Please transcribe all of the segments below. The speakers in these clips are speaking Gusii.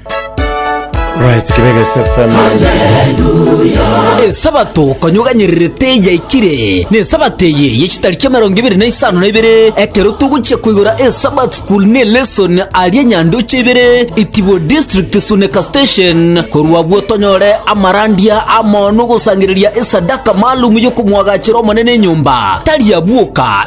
Right, Kireges FM. esabato konyoganyererete yaikire na esabato eye yechitariki emerongo ibere na isano na ibere ekero togochia koigora esabat school ne lesson aria nyandoche ibere itibo district suneka station korwa abwo tonyore amarandia amono gosangereria esadaka maalum yokomwagachera omonene enyomba tari abwoka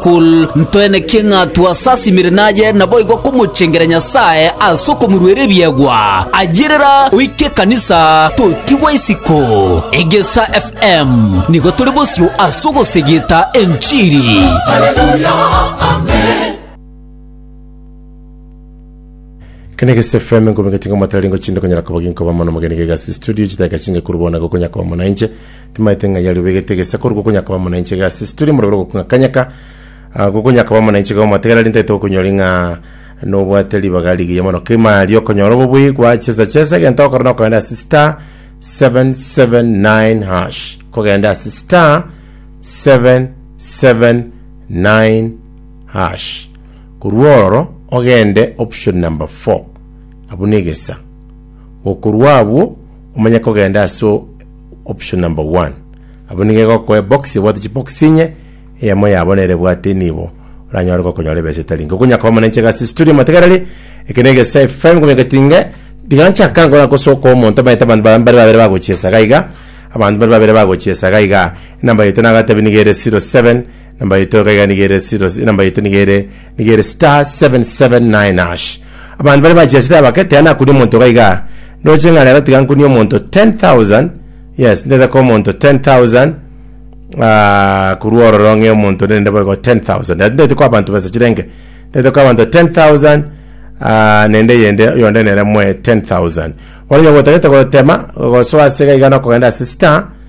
Kul. Ntwenekie ng'a twasasimire naye, naboigo komochengera Nyasae ase okomoruera ebiegwa, ayio rera oike ekanisa, totigwe isiko. Egesa FM nigo tore bosio ase ogosegeta enchiri. Kene Gesi FM nkominga tinga mwatari ngo chinde konyara koba ginko ba mono mogeni gega si studio chitaka chinge kuru bona go konya kwa mona inche Timaete ng'ai aria obegete egesa korwa gokonya koba muna inche iga ase tituri morobere ogokung'akanyeka ah, gokonya koba muna inche iga omotegera rinde togokonyori ng'a nobwate ribaga rigiya mono kima aria okonyora obobui gwa chesa chesa egento okora nokogenda ase star 779 hash kogenda ase star 779 hash korwa ororo ogende option number 4 abwo na egesa gokorwa abwo omanye kogenda ase option number one. Abwo nigo egokoa ebox ebwate chibox inye, eyemo yabo nere ebwate nibo oranyore gokonyora ebesa etari enke. Okonyakoa mono inche iga ase studio matigareri, eke na Egesae FM komanya getinge, tiga nchaka nkore gosoka omonto omanyete abanto baria mbare babere bagochia esaga iga, abanto mbare babere bagochia esaga iga, enamba yaito nagatebi niga ere 07. Namba yaito iga iga niga ere 0 namba yaito niga ere niga ere star 779 hash abantu bari bachesire abake tea nakunia omonto iga iga ndoche ng'a rero tiga nkunie omonto 10000 yes ndete ko omonto 10000 ah, korwa ororo ng'e omonto rende boigo 10000 Rero ndete ko abantu besa chirenge ndete ko abanto 10000 ah, nende yende yonde nere mwe 10000 bono nyogotagete gotema gosoa ase iga iga nokogenda ase star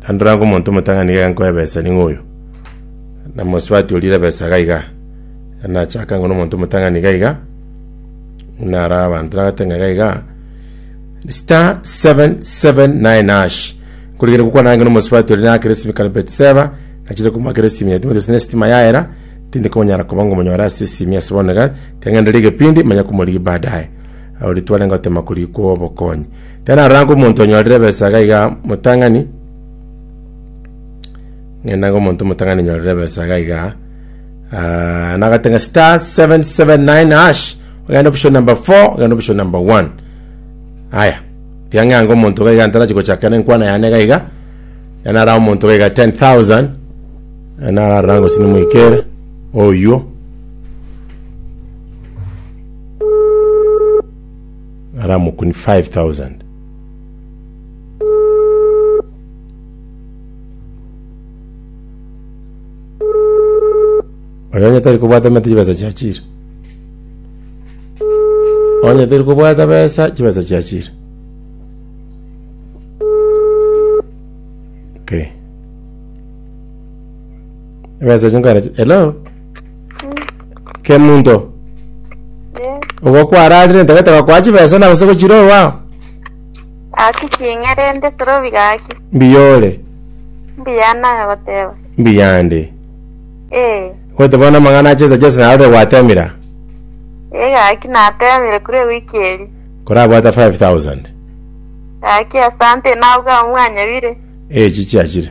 Tandora ngo omonto omotang'ani iga nkoe ebesa ning'o oyo, na mosubati orire ebesa iga iga. Nachaka ngo omonto omotang'ani iga iga, buna ara abanto nagoteba ng'a iga iga, star 779 hash nkorigere gokwana ang'e na omosubati oria nakire esimi kare Betseba, nachire komoakera esimi yaye timanyete gose na esitima yaera, tindi konyara koba ngo monyore ase esimi ase bono iga, tiga ng'ende rigepindi manye komorigia baadaye. Abo ritwarenge gotema korigia kwa obokonyi. Ekero naroranga omonto onyorire ebesaga iga motang'ani, ng'endanga omonto omotang'ani nyorire ebesaga iga, ah, nagatanga star 779 hash, ogenda option number 4, ogenda option number 1. Aya, tiang'eanga omonto iga iga ntarachi gochaka na enkwana yane iga iga, enara omonto iga iga 10,000, enararora gose nimoikere, oywo, Ara amakuni 5,000. Oyo onye tari kobwata emete chibesa chiachire. Onye tari kobwata besa chibesa chiachire. Okay. Ebesa echi nkoera chi- Hello? kemunto Eh, ogo kwararire ntagete gakoa chibesa na gose gochira orwao Gaki ching'erende sorobi gaki. mbiyore Mbuya naye goteba. mbiyande Eh, gote bono amang'ana achesa chesa narore gwatemira eh gaki natemire kure wiki eri. korabwata 5000 Gaki asante nauga omwanyebire. echi chiachire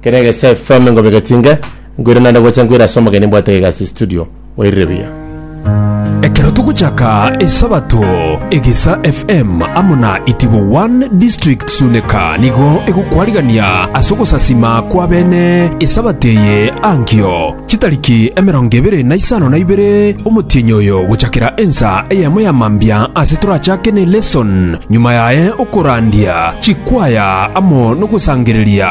Ekero egese FM ngobegetie inge, nkoirana naende gocha nkoira ase omogeni mbwate egasi studio. Oirire buya. Ekero togochaka Esabato, Egesa FM amo na Itibo One District Suneka nigo egokwarigania ase ogosasima kw'abene Esabato eye ankio. Chitariki emerongo ebere na isano na ibere omotienyi oyo gochakera ensa eyemo ya mambia ase torachake ne lesson, nyuma yaye okorandia chikwaya amo nogosangereria.